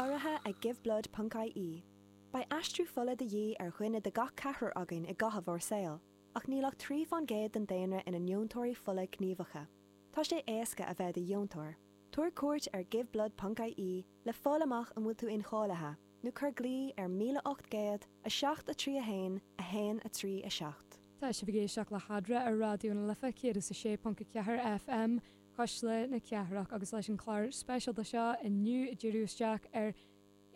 Urraithe ag Giveblood ponc IE. Beidh aistriú fola de dhíth ar dhuine de gach ceathrar againn i gcaitheamh ár saoil, ach níl ach trí fán gcéad den daonra ina ndeontóirí fola gníomhacha. Tá sé éasca a bheith i do dheontóir. Tabhair cuairt ar Giveblood ponc IE le fáil amach an bhfuil tú incháilithe, nó cuir glao ar 1800 7 3 1 1 3 7. Tá sibh ag éisteacht le hAdhradh ar Raidió na Life 106.4 FM. Cuisle na Cathrach agus leis an clár speisialta seo inniu ag díriú isteach ar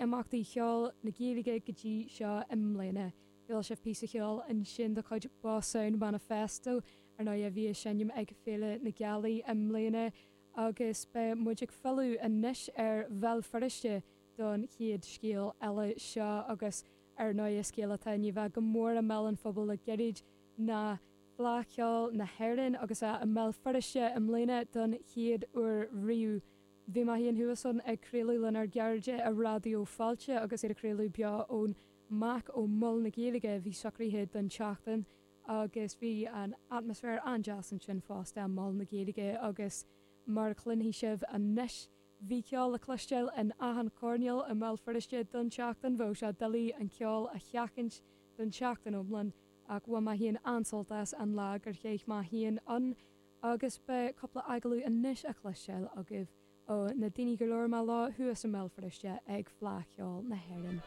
imeachtaí cheoil na Gaeilge go dtí seo i mbliana. Chuala sibh píosa cheoil ansin de chuid Boss Sound Manifesto, ar ndóigh, a bhí ag seinm ag Féile na Gealaí i mbliana agus beidh muid ag filleadh anois ar Bhéal Feirste don chéad scéal eile seo agus, ar ndóigh, is scéal atá i ndiaidh a bheith go mór i mbéal an phobail le gairid ná Fleadh Cheoil na hÉireann agus í i mBéal Feirste i mbliana don chéad uair riamh. Bhí mé féin thuas ann ag craoladh lenár gcairde i Raidió Fáilte agus iad ag craoladh beo ón MAC ó Mhol na Gaeilge a bhí socraithe don tseachtain agus bhí an atmaisféar an-deas ansin fosta i Mol na Gaeilge agus mar a chluinfidh sibh anois bhí ceol le cloisteáil in achan choirneál i mBéal Feirste don tseachtain. Bheadh sé doiligh an ceol a sheachaint don tseachtain iomlán. Ach bhain mé féin an-sult as an lá gur chaith mé féin ann agus beidh cúpla agallamh anois le cloisteáil agaibh ó na daoine gur labhair mé leo thuas i mBéal Feirste ag Fleadh Cheoil na hÉireann.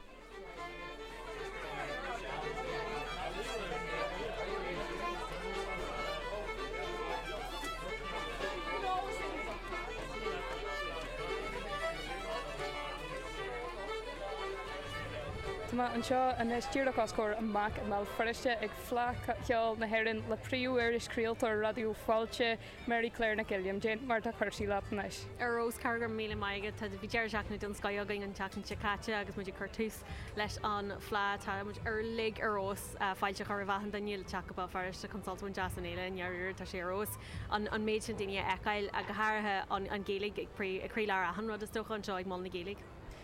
Tá mé anseo anois díreach os comhair an MAC i mBéal Feirste ag Fleadh Cheoil na hÉireann le príomh-iriseoir craoltóir Raidió Fáilte, Mary Claire Nic Uilliam. Cén mar atá cúrsaí leat anois. Ar fheabhas, go raibh míle maith agat. Tá bhí deireadh seachtaine den scoth againn an tseachtain seo caite agus muid ag cur tús leis an Fleadh. Tá muid uilig ar fheabhas. Fáilte a chur roimh achan duine le teacht go Béal Feirste chun sult a bhaint as an fhéile i ndairíre. Tá sé ar fheabhas. an méid sin daoine a fheiceáil, go háirithe an Ghaeilge ag croílár achan rud, is dócha, anseo ag Mol na Gaeilge.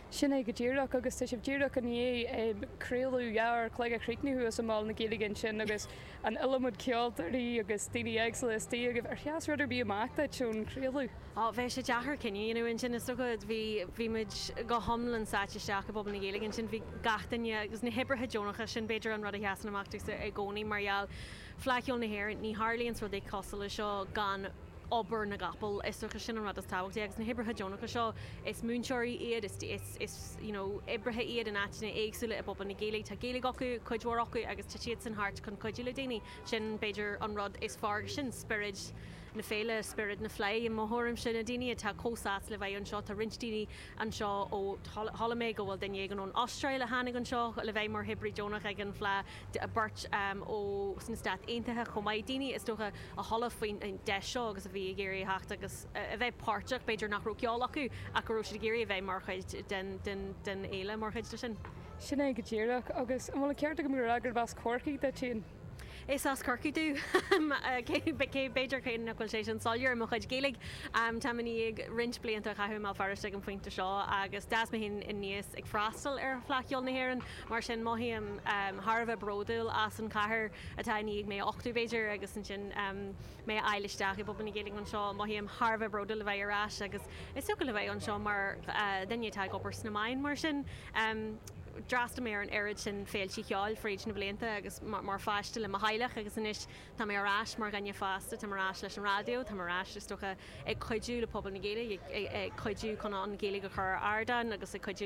Sin é go díreach, agus tá sibh díreach i ndiaidh craoladh leathuair an chloig a chríochnú thuas i Mol na Gaeilge ansin agus an iliomad ceoltóirí agus daoine éagsúla istigh agaibh. Ar sheas rud ar bith amach duit ón chraoladh? Ó, bheadh sé deacair cinneadh a dhéanamh ansin, is dócha. Bhí, bhí muid go hiomlán sáite isteach i bpobal na Gaeilge ansin, bhí gach duine, agus na hoibrithe deonacha, sin b'fhéidir an rud a sheasann amach domhsa i gcónaí mar gheall, Fleadh Cheoil na hÉireann, ní tharlaíonn rud cosúil leis seo gan obair na gcapall. Is dócha sin an rud is tábhachtaí agus na hoibrithe deonacha seo, is múinteoirí iad, is, is, you know, oibrithe iad in áiteanna éagsúla i bpobal na Gaeilge. Tá Gaeilge acu, cuid mhór acu, agus tá siadsan thart chun cuidiú le daoine. Sin b'fhéidir an rud is fearr faoi sin, spiorad na féile, spiorad na fleidhe i mo thuairimse. Na daoine atá chomh sásta a bheith anseo, tá roinnt daoine anseo ó, chuala mé go bhfuil duine éigin ón Astráil a tháinig anseo le bheith mar oibrí deonach ag an bhFleadh. beirt ó sna Stáit Aontaithe chomh maith, daoine is dócha a chuala faoin deis seo agus a bhí ag iarraidh a theacht agus a bheith páirteach, b'fhéidir nach raibh ceol acu ach go raibh siad ag iarraidh a bheith mar chuid den fhéile, mar chuid de sin. Sin é go díreach. Agus an bhfuil an ceart agam gurb as Corcaigh duit féin? Is as Corcaigh dom. Cé, b'fhéidir cé nach bhfuil sé sin soiléir i mo chuid Gaeilge, táim i ndiaidh roinnt blianta a chaitheamh i mBéal Feirste ag an phointe seo agus d'fhás mé féin aníos ag freastal ar Fleadh Cheoil na hÉireann Mar sin, mothaím thar a bheith bródúil as an chathair atá i ndiaidh mé a uchtú, b'fhéidir, agus ansin mé a fháil isteach i bpobal na Gaeilge anseo. Mothaím thar a bheith bródúil a bheith ar ais agus is dócha le bheith anseo mar dhuine atá ag obair sna meáin. Mar sin, d'fhreastal mé ar an oiread sin féilte cheoil fríd na blianta agus mar pháiste le mo theaghlach agus anois tá mé ar ais mar dhuine fásta, táim ar ais leis an raidió, táim ar ais, is dócha, ag cuidiú le pobal na Gaeilge, ag cuidiú chun an Ghaeilge a chur ar ardán agus ag cuidiú